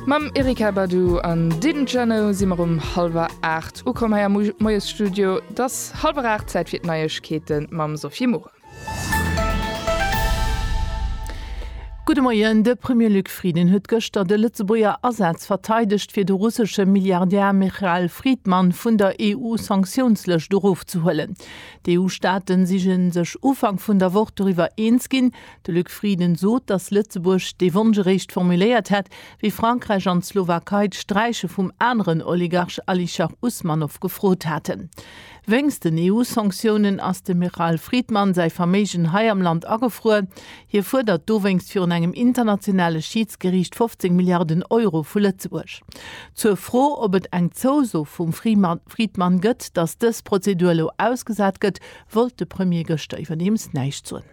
Mam Erykah Badu an Didn't Ya Know si mer um hallwer 8 ukomm hei am Moiesstudio. Et ass hallwer 8, Zäit fir d'Neiegkeete mam Sophie Muren. Gudde Moien, De Premier Luc Frieden huet gëschter de Lëtzebuerger Asaz verteidegt, fir de russesche Milliardär Michael Fridman vun der EU-Sanktiounslëscht erofzehuelen. D'EU-Staaten si sech Ufank vun der Woch doriwwer eens ginn, De Luc Frieden sot, datt Lëtzebuerg dee Wonsch eréischt formuléiert hätt, wéi Frankräich an d'Slowakei d'Sträiche vum aneren Oligarch Alisher Usmanov gefrot haten. Wéinst den EU-Sanktiounen ass dem Michal Friedman säi Verméigen hei am Land agefruer. Hie fuerdert dowéinst virun engem internationale Schiidsgeriicht 15 Milliarden Euro vu Lëtzebuerg. Zur Fro, ob et eng Zouso vum Friedman gëtt, datt dës Prozedur elo ausgesat gëtt, wollt de Premier gëschter iwwerdeems näischt soen.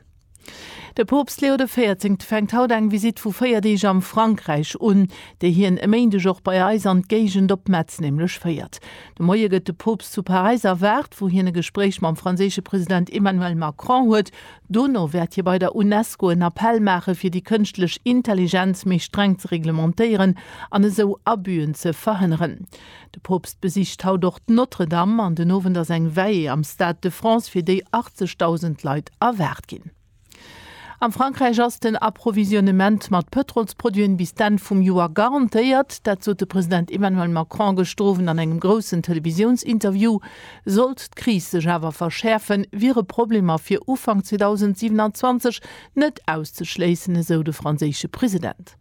De Poopst Leo de Véierzéngte fänkt haut eng Visitt vu 4 Deeg am Frankräich un, déi hien e Méindeg och bei eis an d'Géigend op Metz nämlech féiert. De Moie gëtt de Poopst zu Paräis erwaart, wou hien e Gespréich mam franséische President Emmanuel Macron huet. Dono wäert hie bei der UNESCO en Appell maache fir déi kënschtlech Intelligenz méi streng ze reglementéieren an esou Abüen ze verhënneren. De Poopst besicht haut och d'Notre-Dame an den Owend ass eng Veillée am Stade de France, fir déi 80.000 Leit erwaart ginn. Am Frankräich ass den Approvisionnement mat Pëtrolsproduiten bis d'Enn vum Joer garantéiert. Dat sot de President Emmanuel Macron gëschter Owend an engem groussen Televisiounsinterview. Sollt d'Kris sech awer verschäerfen, wiere Problemer fir Ufank 2027 net auszeschléissen, esou de franséische President.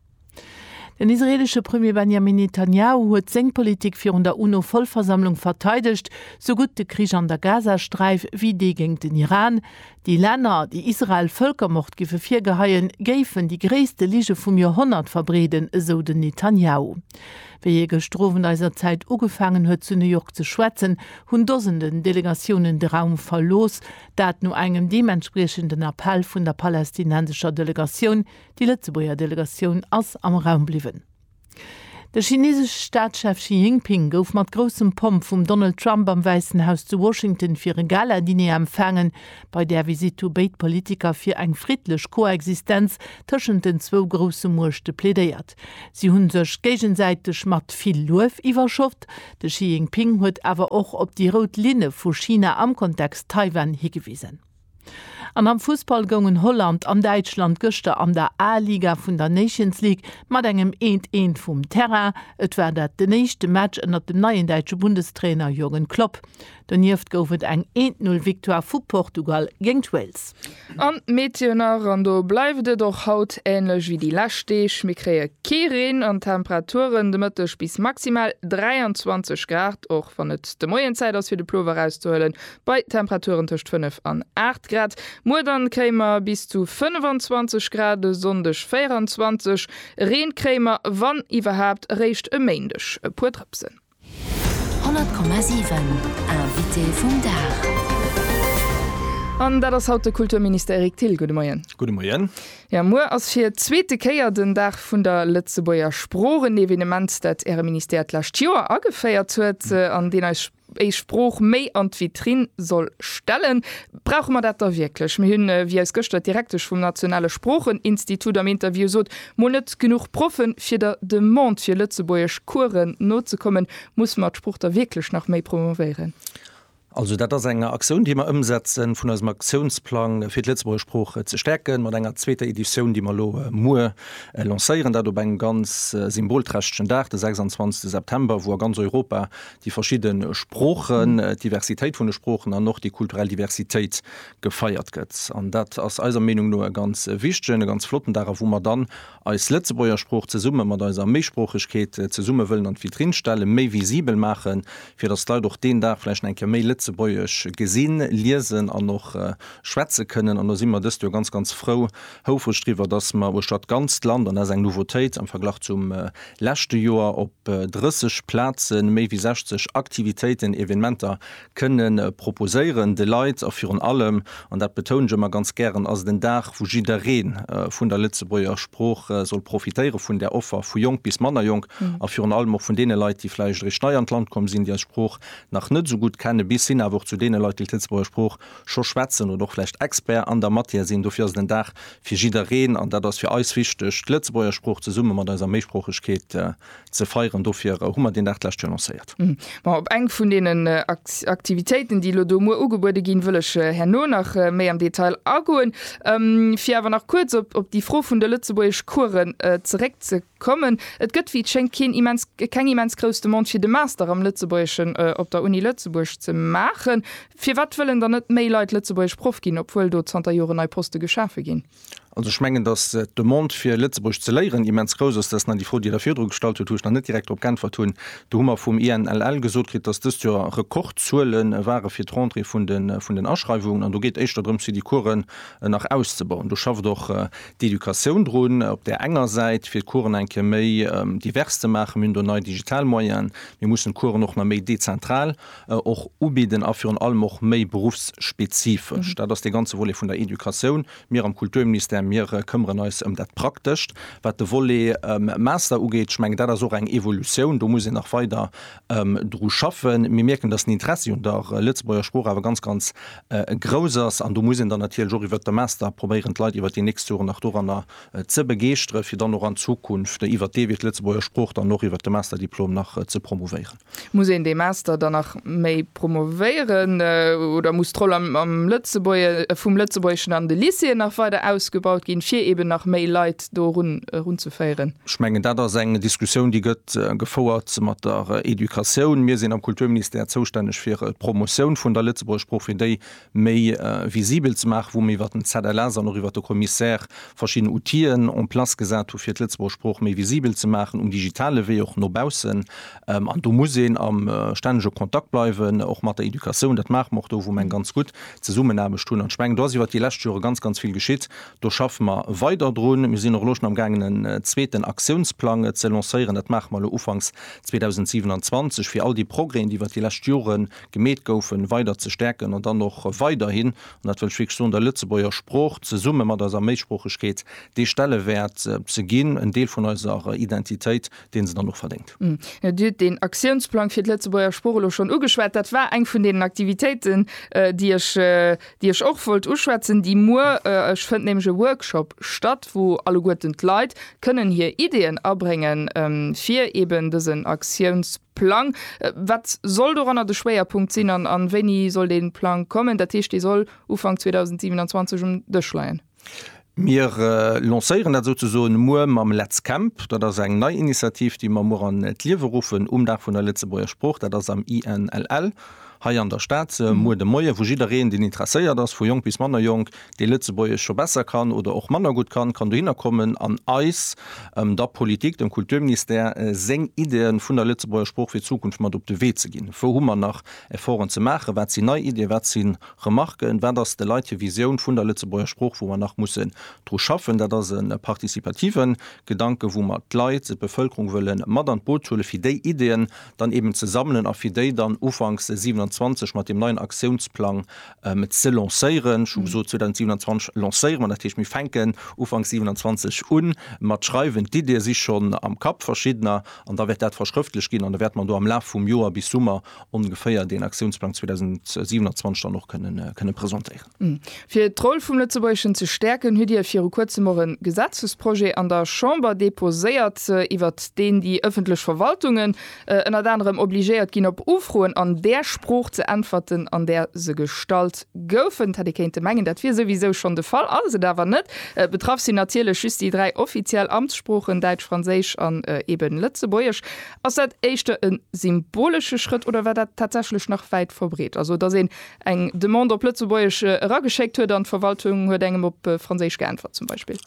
Den israeelesche Premier Benjamin Netanjahu huet seng Politik virun der UNO-Vollversammlung verteidegt, sou gutt de Krich an der Gazasträif wéi dee géint den Iran. Déi Länner, déi Israel Vëlkermord géife virgeheien, géifen déi gréisste Lige vum Joerhonnert verbreeden, esou den Netanjahu. Wéi hie gëschter Owend eiser Zäit ugefaangen huet zu New York ze schwätzen, hunn Dosenden Delegatiounen de Raum verlooss, dat no engem deementspriechenden Appell vun der palästinensescher Delegatioun, Déi Lëtzebuerger Delegatioun ass am Raum bliwwen. De chineesesche Staatschef Xi Jinping gouf mat groussem Pomp vum Donald Trump am Wäissen Haus zu Washington fir e Gala-Diner empfaangen. Bei där Visitt hu béid Politiker fir eng friddlech Koexistenz tëschent den zwou grousse Muechte plädéiert. Si hu sech géigesäiteg mat vill Luef iwwerschott. De Xi Jinping huet awer och op déi rout Linne vu China am Kontext Taiwan higewisen. An am Fussball goungen Holland an Däitschland gëschter an der A-Liga vun der Nations League mat engem eent eent vum Terrain. Et war dat den éischte Match ënnert dem neien däitsche Bundestrainer Jürgen Klopp. Donieft gouf et eng eent Null Victoire vu Portugal géint Wales. An d'Meteo nach, an do bleift et och haut änlech wéi déi lescht Deeg, mir kréie kee Reen an d'Temperaturen de Mëtteg bis maximal 23 Grad, och wann et de Moien Zäit ass fir de Plover erauszehuelen, bei Temperaturen tëscht 5 an 8 Grad. Muer dann kréie mer bis zu 25 Grad, e Sonndeg 24. Reen kréie mer, wann iwwerhaapt, eréischt e Méindeg. E puer Drëpsen. 100,7 Invité vum Dag. An dat ass haut de Kulturminister Eric Thill. Gudde Moien. Gudde Moien. Jo, muer ass fir d'zweete Kéier den Dag vun der Lëtzebuerger Sprooch, en Evenement, dat Äre Ministère d'lescht Joer ageféiert huet an deen eis. Eis Sprooch méi an d'Vitrine soll stellen. Brauche mer dat da wierklech? Mir hunn, wéi eis gëschter d'Direktesch vum nationale Sproocheninstitut am Interview sot, mol net genuch Proffe fir der Demande fir Lëtzebuergesch Coursen nozekommen. Musse mer d'Sprooch da wierklech nach méi promouvéieren? Also dat ass eng Aktioun, déi mer ëmsetzen, vun eisem Aktiounsplang fir d'Lëtzebuerger Sprooch ze stäerken, mat enger zweeter Editioun, déi mer elo muer lancéieren. Dat op engem ganz symbolträchtegen Dag, de 26 September, wou a ganz Europa déi verschidde Sproochen, d'Diversitéit vun de Sproochen an och déi kulturell Diversitéit gefeiert gëtt. An dat ass eiser Meenung no e ganz wichtegen, e ganz flotten Dag, a wou mer dann eis Lëtzebuerger Sprooch zesumme mat eiser Méisproochegkeet zesumme wëllen an d'Vitrinn stellen, méi visibel maachen, fir datt d'Leit och deen Dag vläicht nach eng Kéier méi Lëtzebuergesch gesinn, liesen an och schwätze kënnen. An do si mer dëst Joer ganz, ganz frou, Houfreg driwwer, dass mer uechter d'ganzt Land, an dat ass eng Nouveautéit am Verglach zum leschte Joer, op 30 Plaze méi wéi 60 Aktivitéiten, Evenementer kënne proposéieren de Leit. A virun allem, an dat betounen ech ëmmer ganz gären, ass et en Dag, wou jidderee vun der Lëtzebuerger Sprooch soll profitéiere vun där Offer, vu jonk bis manner jonk, a virun allem och vun deene Leit, déi vläicht eréischt nei an d'Land komm sinn, déi eis Sprooch nach net esou gutt kenne, bis hin awer och zu deene Leit, déi d'Lëtzebuerger Sprooch scho schwätzen oder och vläicht Expert an der Matière sinn. Dofir ass et en Dag fir jiddereen an dat ass fir eis wichteg, d'Lëtzebuerger Sprooch zesumme mat eiser Méisproochegkeet ze feieren. Dofir hu mer deen Dag d'lescht Joer lancéiert. Ma op eng vun deenen Aktivitéiten, déi elo do muer ugebuede ginn, wëll ech herno nach méi am Detail agoen. Fir awer nach kuerz op déi Fro vun de Lëtzebuergeschcoursen zeréckzekommen, Kommen. Et gëtt wéi et schéngt keen immens keng immens grouss Demande fir de Master am Lëtzebuergeschen op der Uni Lëtzebuerg ze maachen. Firwat wëllen dann net méi Leit Lëtzebuergesch Proff ginn, obwuel do zanter Joren nei Poste geschafe ginn? Also ech mengen, datt d'Demande fir Lëtzebuergesch ze léieren immens grouss ass. Dat ass nach déi Fro, déi Der virdru gestallt hutt, wou ech nach net direkt drop geäntwert hunn. Do hu mer vum INLL gesot kritt, datt dëst Joer Rekordzuele ware fir d'Rentrée vun den Aschreiwungen. An do geet éischter drëms fir déi Coursen nach auszebauen. Do schafft och d'Educatioun drun, op där enger Säit fir d'Coursen eng Kéier méi divers ze maachen. Mir hunn do nei digital Moyenen. Mir mussen d'Coursen och nach méi dezentral och ubidden a virun allem och méi beruffsspezifesch. Dat ass dee ganze Volet vun der Educatioun. Mir am Kulturministère, mir këmmeren eis ëm dat Praktescht. Wat de Volet Master ugeet, ech mengen, dat ass och eng Evolutioun. Do muss een nach weider dru schaffen. Mir mierken, dass den Interessi un der Lëtzebuerger Sprooch awer ganz, ganz grouss ass. An do muss een dann natierlech och iwwert de Master probéieren, d'Leit iwwert déi nächst Joren nach doranner ze begeeschtere fir dann och an Zukunft iwwert dee Wee d'Lëtzebuerger Sprooch dann och iwwert de Masterdiplom nach ze promouvéieren. Muss een dee Master dann nach méi promouvéieren oder muss d'Roll vum Lëtzebuergeschen an de Lycéeën nach weider ausgebaut ginn, fir eeben nach méi Leit do erun erunzeféieren. Ech mengen, dat ass eng Diskussioun, déi gëtt gefouert mat der Educatioun. Mir sinn am Kulturministère zoustänneg fir d'Promotioun vun der Lëtzebuerger Sprooch, fir déi méi visibel ze maachen, wou mir iwwert den ZLS an och iwwert de Commissaire verschidden Outien en place gesat hu fir d'Lëtzebuerger Sprooch méi visibel ze maachen, um digitale Wee och no baussen. An do muss een am stännege Kontakt bleiwen, och mat der Educatioun. Dat maache mer och do, wou mer eng ganz gutt Zesummenaarbecht hunn. An ech mengen, do ass iwwert déi lescht Jore ganz, ganz vill geschitt. Do schaffe mer weider drun. Mir sinn och elo schonn am gaangen en zweeten Aktiounsplang ze lancéieren. Dat maache mer elo ufanks 2027, fir all déi Progrèsen, déi iwwert déi lescht Jore gemeet goufen, weider ze stäerken an dann och weiderhin, an dat wëll ech wierklech soen, der Lëtzebuerger Sprooch zesumme mat eiser Méisproochegkeet dee Stellewäert ze ginn, en Deel vun eiser Identitéit, deen se dann och verdéngt. Dir hutt deen Aktiounsplang fir d'Lëtzebuerger Sprooch elo schonn ugeschwat. Dat war eng vun deenen Aktivitéiten, déi ech, déi ech och wollt uschwätzen, déi muer, ech fënnt nämlech e Workshop statt, wou alleguerten d'Leit kënnen hir Ideeën abréngen fir eben dësen Aktiounsplang. Wat soll doranner de Schwéierpunkt sinn an wéini soll dee Plang kommen? Dat heescht, dee soll Ufank 2027 um Dësch leien. Mir lancéieren dat souzesoen muer mam Let's Camp. Dat ass eng nei Initiativ, déi mer muer an d'Liewe ruffen um Dag vun der Lëtzebuerger Sprooch. Dat ass am INLL hei an der Stad muer de Moie, wou jiddereen, deen interesséiert ass, vu jonk bis manner jonk, dee Lëtzebuergesch scho besser kann oder och manner gutt kann, kann dohinner kommen an eis, der Politik, dem Kulturministère, seng Iddie vun der Lëtzebuerger Sprooch fir d'Zukunft mat op de Wee ze ginn. Wou hu mer nach Efforten ze maachen? Wat sinn nei Iddien? Wat sinn Remarken, Wat ass de Leit hir Visioun vun der Lëtzebuerger Sprooch, wou mer nach mussen dru schaffen? Dat ass e participative Gedanken, wou mer d'Leit, d'Bevëlkerung wëlle mat an d'Boot huelen, fir déi Ideeën dann eben ze sammelen a fir déi dann ufanks 27 mat deem neien Aktiounsplang ze lancéieren. Ech hu gesot, 2027 lancéiere mer, dat heescht, mir fänken ufanks 27 u mat schreiwen. D'Ideeë si schonn am Kapp, verschiddener, an da wäert dat verschrëftlech ginn an da wäerte mer do am Laf vum Joer bis Summer ongeféier deen Aktiounsplang 2027 dann och kënne presentéieren. Fir d'Roll vum Lëtzebuergeschen ze stäerken, hutt Dir viru kuerzem och e Gesetzesprojet an der Chamber deposéiert, iwwert deen déi ëffentlech Verwaltungen ënnert anerem obligéiert ginn, op Ufroen an där Sprooch ze äntwerten, an där se gestallt goufen. Et hätt ee kéinte mengen, dat wier souwisou schonn de Fall, ass et awer net. Betraff sinn natierlech just déi dräi offiziell Amtssproochen, Däitsch, Franséisch an eebe Lëtzebuergesch. Ass dat éischter e symbolesche Schrëtt oder war dat tatsächlech nach wäit verbreet, also datt een eng Demande op Lëtzebuergesch erageschéckt huet an d'Verwaltung huet engem op Franséisch geäntwert zum Beispill?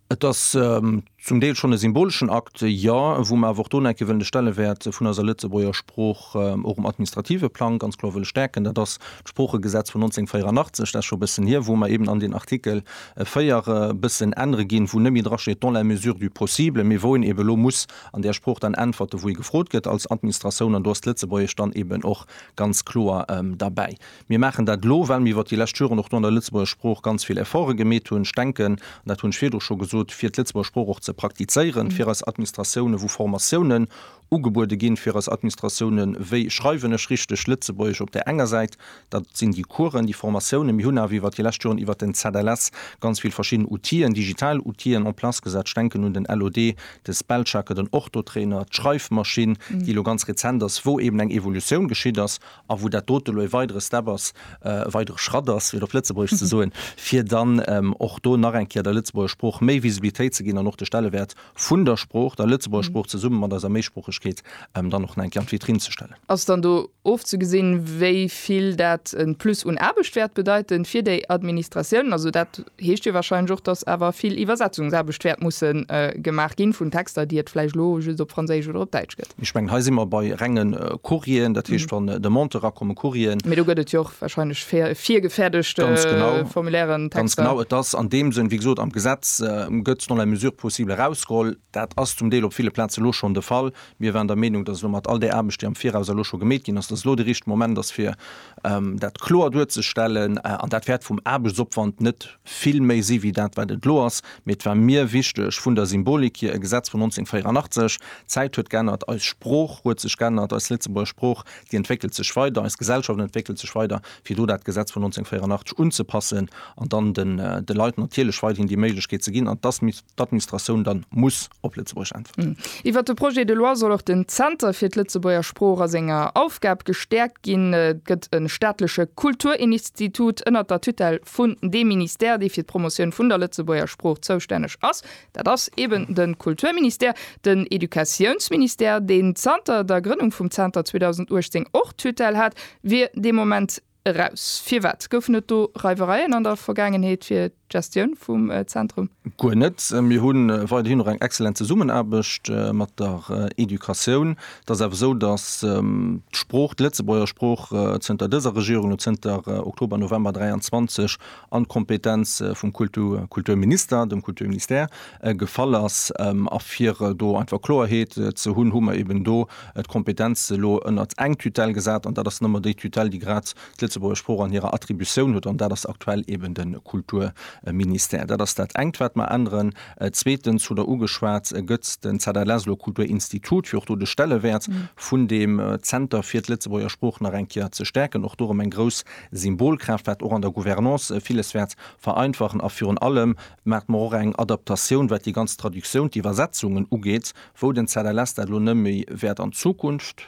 Et ass zum Deel schonn e symboleschen Akt, jo, wou mer awer och do nach eng Kéier wëllen de Stellewäert vun eiser Lëtzebuerger Sprooch och um administrative Plang ganz kloer wëlle stäerken. Dat ass d'Sproochegesetz vun 1984, dat ass scho e bëssen hier, wou mer eben an den Artikel 4 e bëssen ännere ginn, wou net méi drasteet dans la mesure du possible, mee wou een eben elo muss, an där Sprooch dann äntwerte wou ee gefrot gëtt als Administratioun, an do ass d'Lëtzebuergesch dann eben och ganz kloer derbäi. Mir maachen dat elo, well mir iwwert déi lescht Joren och do an der Lëtzebuerger Sprooch ganz vill Efforte gemeet hunn. Ech denken, an dat hunn ech virdru scho gesot, fir d'Lëtzebuerger Sprooch och ze praktizéieren fir eis Administratiounen, wou Formatiounen ugebuede ginn fir eis Administratiounen, wéi schreiwen ech richteg Lëtzebuergesch op där enger Säit, Dat sinn déi Coursen, déi Formatiounen. Mir hunn awer iwwert déi lescht Joren iwwert den ZLS ganz vill verschidden Outien, digital Outien en place gesat. Ech denken un den LOD, de Spellchecker, den Orthotrainer, d'Schreifmaschinn, déi elo ganz rezent ass, wou eeben eng Evolutioun geschitt ass a wou dat dote elo e weidere Step ass, e weidere Schratt ass, fir et op Lëtzebuergesch ze soen, fir dann och do nach eng Kéier der Lëtzebuurger Sprooch méi Visibilitéit ze ginn an och de Stellewäert vun der Sprooch, der Lëtzebuerger Sprooch zesumme mat eiser Méisproochegkeet dann och nach eng Kéier an d'Vitrinn ze stellen. Ass dann do ofzegesinn, wéi vill dat e Plus un Aarbecht wäert bedeiten fir déi Administratiounen? Also dat heescht jo warscheinlech och, dass awer vill Iwwersetzungsaarbecht wäert musse gemaach gi vun Texter, déi et vläicht elo just op Franséisch oder op Däitsch. geschéckt gëtt. Ech mengen, hei si mer bei renge Courrieren, dat heescht, wann Demandë erakommen, Courrieren. Mee do gëtt et jo och warscheinlech virgefäerdegt Formulairen, Texter. Ganz genau. Et ass an deem Sënn, wéi gesot, am Gesetz gëtt dans la mesure possible erausgeholl. Dat ass zum Deel op ville Plaze elo schonn de Fall. Mir waren der Meenung, dass elo mat all där Aarbecht, déi am Viraus elo scho gemeet ginn ass, dass elo de richtege Moment ass, fir dat kloer duerzestellen. An dat wäert vum Aarbechtsopwand net vill méi si wéi dat, wat et elo ass, mee et war mir wichteg vun der Symbolik hier, e Gesetz vun 1984, d'Zäit huet g'ännert, eis Sprooch huet sech g'ännert, eis Lëtzebuerger Sprooch, déi entwéckelt sech weider, eis Gesellschaft entwéckelt sech weider, fir do dat Gesetz vun 1984 unzepassen an dann de Leit natierlech weiderhin déi Méiglechkeet ze ginn, an dass d'Administratioun dann muss op Lëtzebuergesch äntwerten. Iwwert de Projet de loi soll och den Zenter fir d'Lëtzebuerger Sprooch a senger Aufgab gestäerkt ginn. Et gëtt e staatleche Kulturinstitut ënnert der Tutelle vun deem Ministère, dee fir d'Promotioun vun der Lëtzebuerger Sprooch zoustänneg ass. Dat ass eeben de Kulturministère. Den Educatiounsministère, deen zanter der Grënnung vum Zenter 2018 och d'Tutelle hat, wier dee Moment eraus. Firwat? Goufen et do Reiwereien an der Vergaangenheet fir d'Gestioun vum Zentrum? Guer net. Mir hu weiderhin och eng excellent Zesummenaarbecht mat der Educatioun. Et ass awer esou, datt d'Sprooch, d'Lëtzebuerger Sprooch, zënter dëser Regierung, elo zënter Oktober, November 23, an d'Kompetenz vum Kulturminister, dem Kulturministère, gefall ass. A fir do einfach Kloerheet ze hunn, hu mer eben do d'Kompetenz elo ënnert eng Tutelle gesat. An dat ass nëmme déi Tutelle, déi grad d'Lëtzebuerger Sprooch an hirer Attributioun huet, an dat ass aktuell eben de Kulturministère. Dat ass dat engt, wat mer änneren. Zweetens hutt Der ugeschwat, Gëtt es den ZLS elo Kulturinstitut, fir och do de Stellewäert vun deem Zenter fir d'Lëtzebuerger Sprooch nach eng Kéier ze stäerken? Och do erëm eng grouss Symbolkraaft, wat och an der Gouvernance villes wäert vereinfachen. A virun allem maacht mer och eng Adaptatioun, wat déi ganz Traductioun, d'Iwwersetzungen ugeet, wou den ZLS dat elo net méi wäert an Zukunft,